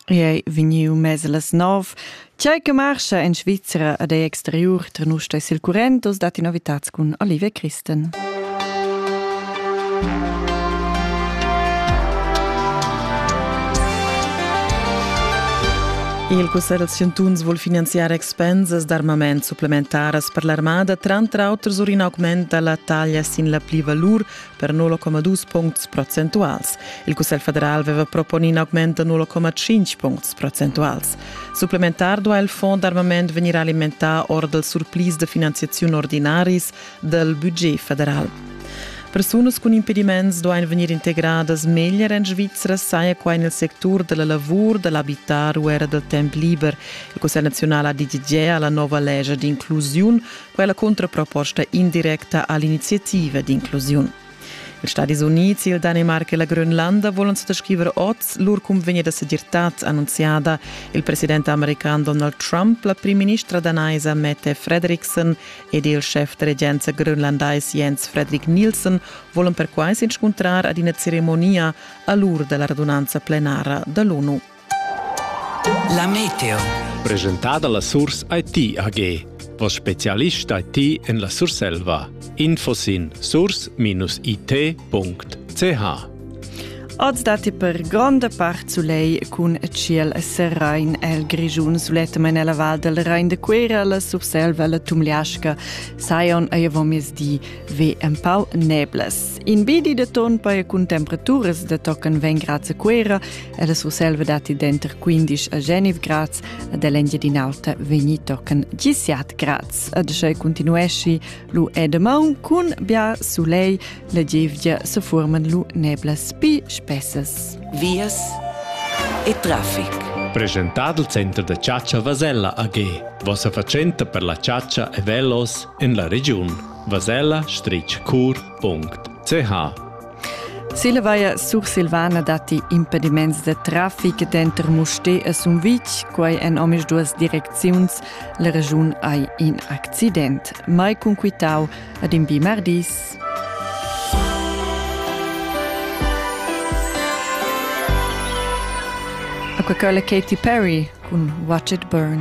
I ei vegniu mess las nov. Tgei che marscha en Svizra ad ei exteriur tra nus e sil current, oz dat novitads cun Olivia Christen. Il Cussegl da Chantuns vul finanziar expensas d'armament supplementaras per l'armada, tranter auter sur in augment dalla taglia sin la plivalur per 0,2 puncts procentuals. Il Cussegl federal aveva proponì in augment da 0,5 puncts procentuals. Supplementar duai il fond d'armament vegnir alimentà or dals surplis da finanziaziun ordinaris dal budget federal. Persunas cun impediments duain vegnir integradas meglier en Svizra, saja quai nel sectur della lavur, dell'abitar u era del temp liber. Il Cussegl nazional ha deditgà alla nova lescha d'inclusiun quella cuntraproposta indirecta all'iniziativa d'inclusiun. Ils Stadis Uniți, il Danemarca e la Grönlanda volan suttascriver oz lur cunvegna da segirtad annunziada il president american Donald Trump, la primministra danaisa Mette Fredriksen ed il schef da regenza grönlandais Jens Fredrik Nielsen volan perquai s'inscuntrar ad ina ceremonia a l'ur da la radunanza plenara da l'ONU. La meteo. Presentada la Surs IT AG. Vos specialist IT en la Surselva. Info sin surs-it.ch Oz datti per gronda part sulei cun tschiel serain el Grischun sulettamen ella Val del Rein de Cuera, la Surselva, la Tumliasca, Sion ei avon miezdi ve empau neblas. In bedi de ton paia cun temperaturas de tocan veng grazie Quera e la Surselva dati denter 15 a Genif grads ad l'Engiadin'Alta vegni tocan 17 grads. Ad schei continuesci lu edemau cun bia sulei la gievgia se forman lu neblas pi spessas. Vias e traffic. Presentad il Center da Ciaccia Vasella AG, vossa fatschenta per la ciaccia e velos en la regiun. vasella-cur.ch Silvaia Sursilvana datti impediments da traffic denter Mustér e Sumvitg, quai en omisduas direcziuns. La regiun hai in accident. Mai cunquitau ad in bi mardis. Coca-Cola Katy Perry cun Watch It Burn.